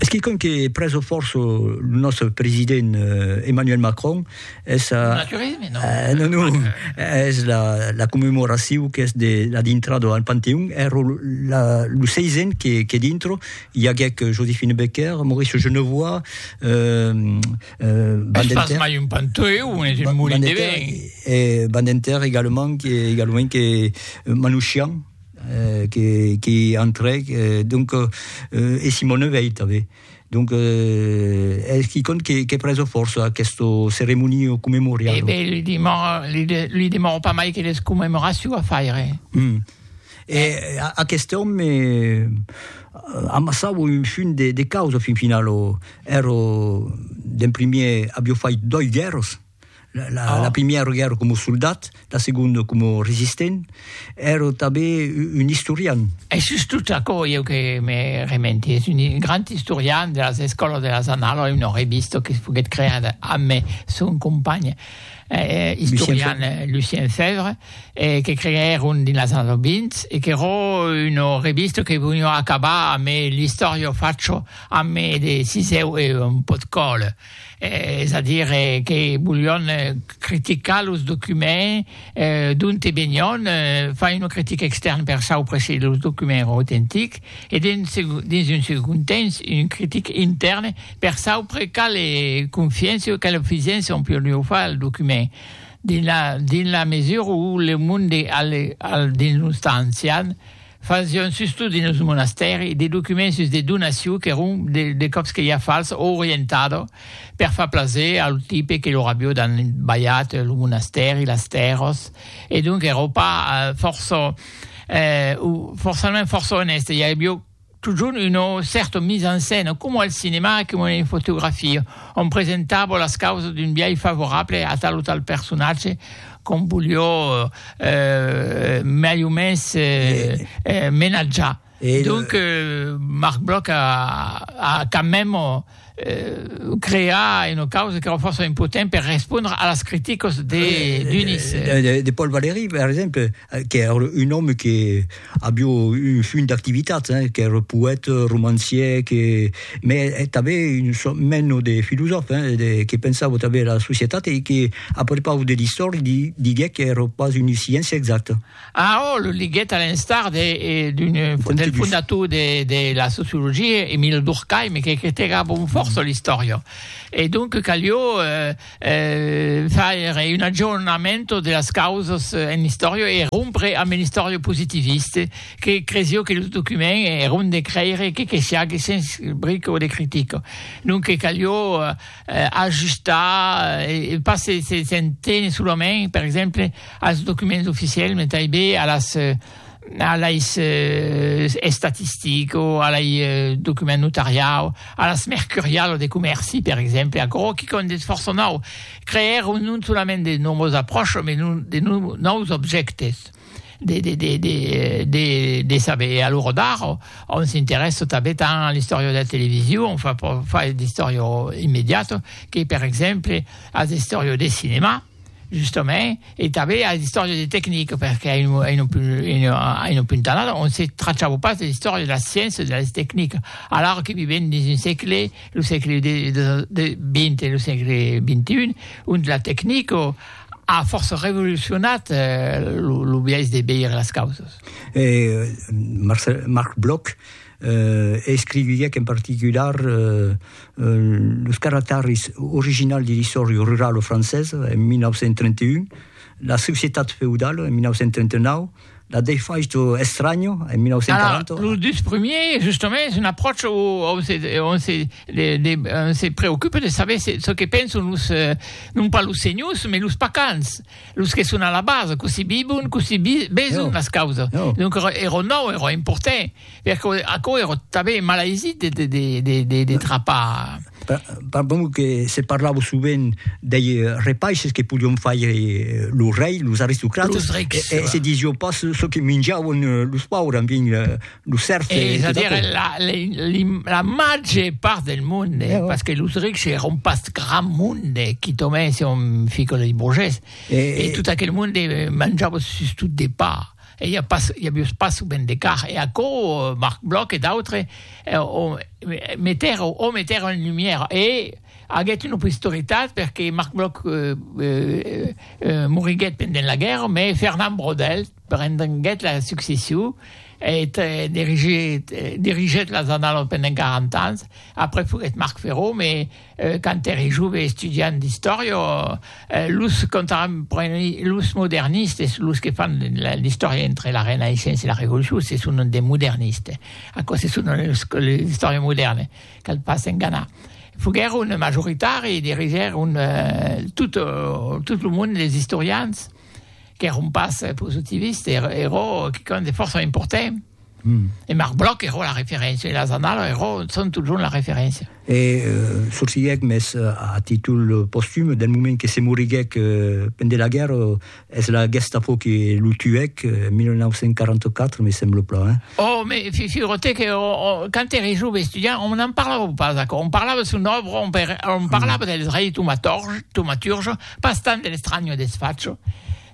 Es quicòm que prèso fòrça lo nòstre president Emmanuel Macron, es a... Un naturisme, non? Non, non, es la, la commemoracion qu'es de la dintrada al Panteon, èra la, lo seisen que, que dintre i aguèc Joséphine Baker, Maurice Genevoix, Badinter... Es pas mai un panteon, es un molin de vent. Badinter, egalement, que, egalement que Manouchian. que que entrèc donc e Simone Veit tanben donc es quicòm que que preso fòrça aquesto ceremonio commemorial. E ben li demòro li de li demòro pas mai que les commemoraciu a faire. Hum e aqueste òme amassavo un funt de de causa fin finalo ero d'en primier abio fait doi guèrras. La primièra guèrra coma soldat, la segonda coma resistent, èra tanben un istorian. Es sus tot aquò ieu que me rementi, es un grand istorian de las escòlas de las Annalas, una revista que foguèt creada amb son companh istorian Lucien Fèvre, que creèron dins las annalas 20, e qu'èra una revista que veniá acabar amb l'istòria facha amb de sisèu e un pòt còla. es a dire que volion criticar los documents d'onte venion, far una critica extèrna per saupre se los documents èran autentics, e dins un segond temps una critica intèrna per saupre quala confiéncia o quala fidéncia on podiá far al document, dins la mesura où le monde al dins los temps ancians, Fasión sustot dins lo monastèri de documents sus de donaciu qu'èron de còps que ja fals o orientado per far plaser a lo tipe que lor avió dan balhat lo monastèri, las tèrras e donc èro pas fòrça o fòrçament fòrça onèste, i avió totjorn una cèrta mise en scène coma al cinema e coma en fotografia, ont presentava las causas d'un biais favorable a tal o tal personatge com volió mai o mens menatjar. Donc Marc Bloch a quand même creat una causa qu'èra fòrça impotent per respondre a las criticas de Dunis. De Paul Valéry, per exemple, qu'èra un òme que Avió un funt d'activitats, qu'èr poèt, romancièr, que mè tanbè un sòrt meno de filosòf, que pensava tanbè era societat e que a prepaus de l'istòri diguec qu'èr pas una sciéncia exacta. Ah, ò, lo liguèt a l'instar de d'un del fondator de de la sociologia, Emile Durkheim, que critegava amb fòrça l'istòria. E donc calió faire un aggiornamento de las causas en l'istòria e rompre amb l'istòria positivista que cresió que lo document èra ont de creire que que siague sens brica de critica. Donque calió ajustar e pas se se se tenir solament, per exemple, als documents oficiels, mai tanben a las a lei estatistico, a lei document notariau, a las mercurialo de comèrci, per exemple, aquò que qu'an de fòrça nau, creèr non solament de nòvas apròchas, mai de nòus objèctes de de de de de de saber. E alora d'ara on s'interèssa tanben tant a l'istòria de la television, on fa fa d'istòria immediata, que per exemple a l'istòria de cinema. Justament, e tanben as d'istòria de tecnic, perqué en un, en un, en un, en un punt anat, on se trachava pas de l'istòria de la sciéncia, de las tecnica. Alara que vivem dins un sègle, lo sègle de, de, de vint e lo sègle XXI, ont la tecnico a fòrça revolucionat lo, lo biais de veire las causas. E Marcel, Marc Bloch, escriviá qu'en particular, los caractèris originals de l'isòria rurala francesa en 1931, la societat feudala en 1939, la defaicho estranho en 1940. Alors, los dus premiers, justement, es una apròcha on se, on se, de, de, on se preocupa de saber se, ce que pensan los, eh, non pas los senhors, mais los pacans, los que son a la base, cossí vivon, cossí beson no. las causas. No. Donc, era nou, era important. Per quò, aquò ero tanben malaisit de, de, de, de, de, de trapar. Pa, pa bon que se parlava sovent dei repaisses que podion faire eh, lo rei, los aristocrates. Los rics, e, e va. se disio pas çò que minjavan eh, los paures, en fin, eh, lo cerf e, e tot aquò. La, la, li, la màger part del monde, eh, parce que los rics eron pas gran monde, quitament se on fica lei burgés, e, e tot aquel monde manjava sustot de pa. E i a pas, i a vius pas ben de car, e aquò Marc Bloch e d'autres o metèron, o metèron en lumière, e aguèt una posteritat perque Marc Bloch moriguèt pendent la guèrra, mès Fernand Braudel prenguèt la succession e dirigèt las Annalas pendent 40 ans, après foguèt Marc Ferron, mès Quand ère jove estudiant d'istòria, los contemporanis, los modernistes, los que fan l'istòria entre la Renaissença e la Revolucion, se sonan de modernistes. Aquò se sonan los que l'istòria modèrna, cal pas enganar. Foguèron majoritari e dirigèron tot, tot lo monde les istorians qu'èron pas positivistes, e ero quicòm de fòrça important. E Marc Bloch ero la referéncia, e las annalas ero son totjorn la referéncia. E sorsilhèc, mès a títol postum, del moment que se moriguèc pendent la guèrra, es la Gestapo que lo tuèc, 1944, me sembla plan, hein? Oh, me figure-te que quand ère jove estudiant, on n'en parlava pas d'aquò, on parlava son òbra, on parlava dels rei tomaturges, pas tant de l'Estranho e de Sfaccio.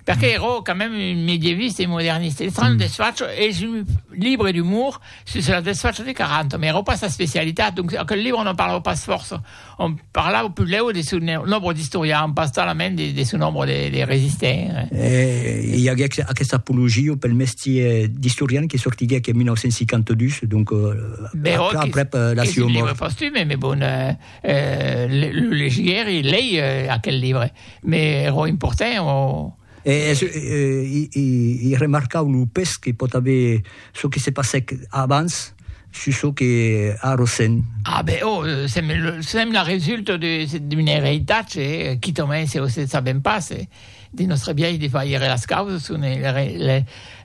Perque ero quand mème un medieviste e moderniste. Eth Trano desfacho es un libre d'umor sus la desfacho de Caranto, mès ero pas sa especialitat, donc aquel libre non parlava pas fòrça. Òm parlava puslèu de son òbra d'istorian, pas talament de son òbra de resistent. E i aguec aquesta apologia pel mestier d'istorian que sortiguec en 1952, donc aprèp la sua mòrt. Eth libre pòstume, mès bon, Lo legièri lei aquel libre, me ro importè o. I remarcau lo pes que pòt aver çò que se passèc abans sus çò que a ressent. A ben, o sèm la resulta d'un eritatge e quitament se o se sabèm pas de nòstre biais de faire las causas son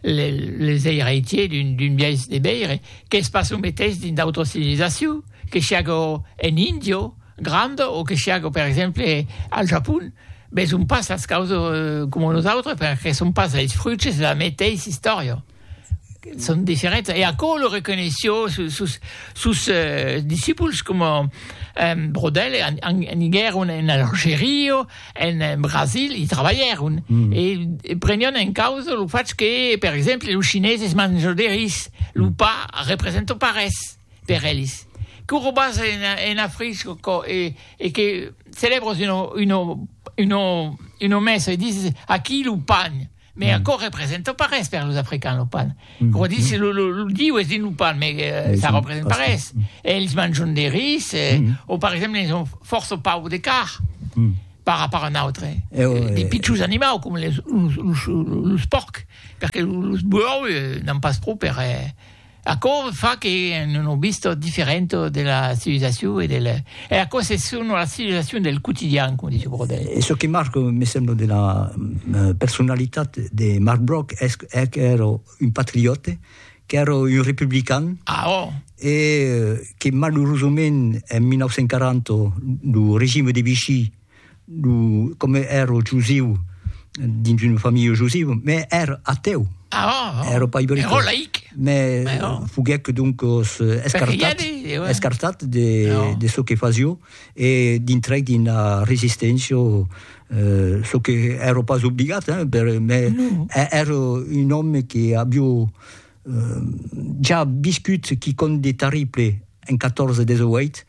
les eiratiers d'un biais de veire, qu'es pas lo meteis dins d'autras civilizacions. Que siágo en Índia granda o que siágo, per exemple, al Japon, veson pas las causas coma nosautres perque son pas es fruits de la meteissa istòria. Son diferents. E aquò lo reconeishió sos, sos discipuls coma Brodel, aniguèron en Algeria, en Brasil, i trabalhèron e prenián en causa lo fach que, per exemple, los Chineses manjan de ris, lo pa representa pas res. per elis que o robas ena frisco e que celèbres una messa e dises aqui lo pan me aquò representa pas res per los africans lo pan o dises lo diu es dins lo pan me ça representa pas res e elis manjon de ris o per exemple elis ont fòrça pauc de carn par rapòrt a nautre de pichons animaus coma los pòrcs perque los buòus n'an pas pro per Aquò fa que en un obist diferent de la civilizacion e del... E aquò se son la civilizacion del quotidian, coma dice Brodel. E çò que marca, me sembla, de la personalitat de Marc Bloch es qu'èra un patriòte, qu'èra un republican. Ah, oh! E que, malurosament, en 1940, lo regime de Vichy, Lo, comme ero jusiu, dins una familha jusiva, me ero ateu. Oh, ero pas ibericos. Ero laic. Me Mais oh. foguec donc escartat, de, ouais. escartat de, oh. de ce que fasio e dintrec d'una resisténcia euh, ce que ero pas obligat, hein, per, mais no. ero un òme que avio euh, ja viscut quicòm de terrible en 14-18,